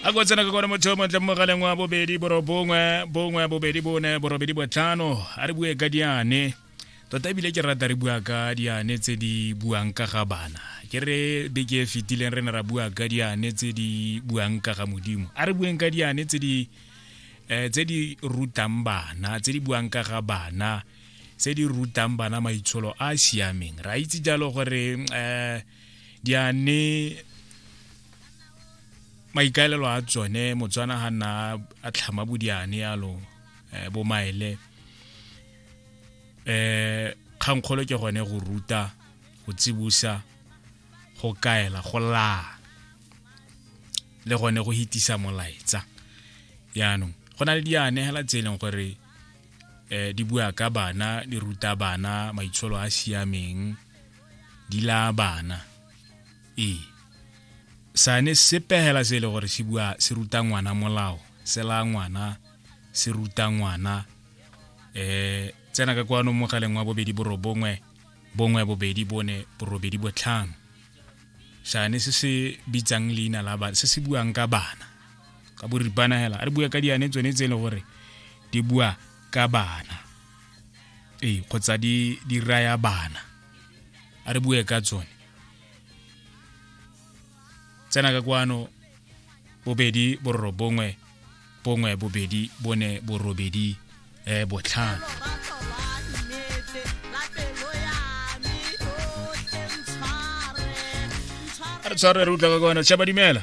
a ko tsena ka kone motho o montle mogaleng wa bobedi borobongwe bongwe bobedi bone borobedi botlhano a re bue ka diane tota ebile ke rata re bua ka diane tse di buang ka ga bana ke re beke e fetileng re ne ra bua ka diane tse di buang ka ga modimo a re bueng ka diane tse di eh, tse di rutang bana tse di buang ka ga bana tse di rutang bana maitsholo a a siameng ra itse jalo gore um di a ne maikaelelo a tsone motswana ga nna a tlhama bodiane yalo um eh, bomaele um kgankgolo ke gone go ruta go tsibusa go kaela go laa le gone go hitisa molaetsa yaanong go na le diane hela tse e leng gore um di bua ka bana di ruta bana maitsholo a siameng di laya bana ee sane sepegela se e le gore se bua se ruta ngwana molao se laya ngwana se ruta ngwana um tsena ka kwano mogaleng wa bobedi borobongwe bongwe bobedi bone borobedi botlhano sane se se bitsang leina la bana se se buang ka bana ka boripana hela a re bua ka diane tsone tse e le gore di bua ka bana ee kgotsa di di raya bana a re bue ka tsone tsena ka kwano bobedi bororo bongwe bongwe bobedi bone borobedi eh botlhano re tshware re utlwa ka kwana tšhaba dumela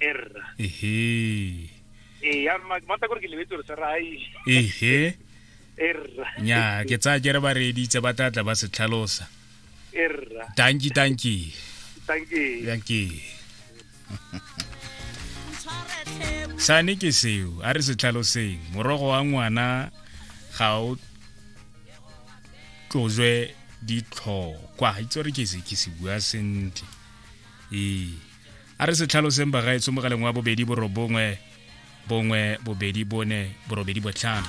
erra ehe ee ya ma mata gore ke lebetse gore sera ai ehe erra nya ke tsaya kere ba reeditse ba tla tla ba se tlhalosa erra tanki tanki thank you tanki sane ke seo a re se tlhaloseng morogo wa ngwana ga o tlozwe ditlhokwa itse gore ke se ke se bua sentle ee a re se tlhaloseng bagaetsho mogaleng wa bobedi borobongwe bongwe bobedi bone borobedi botlhano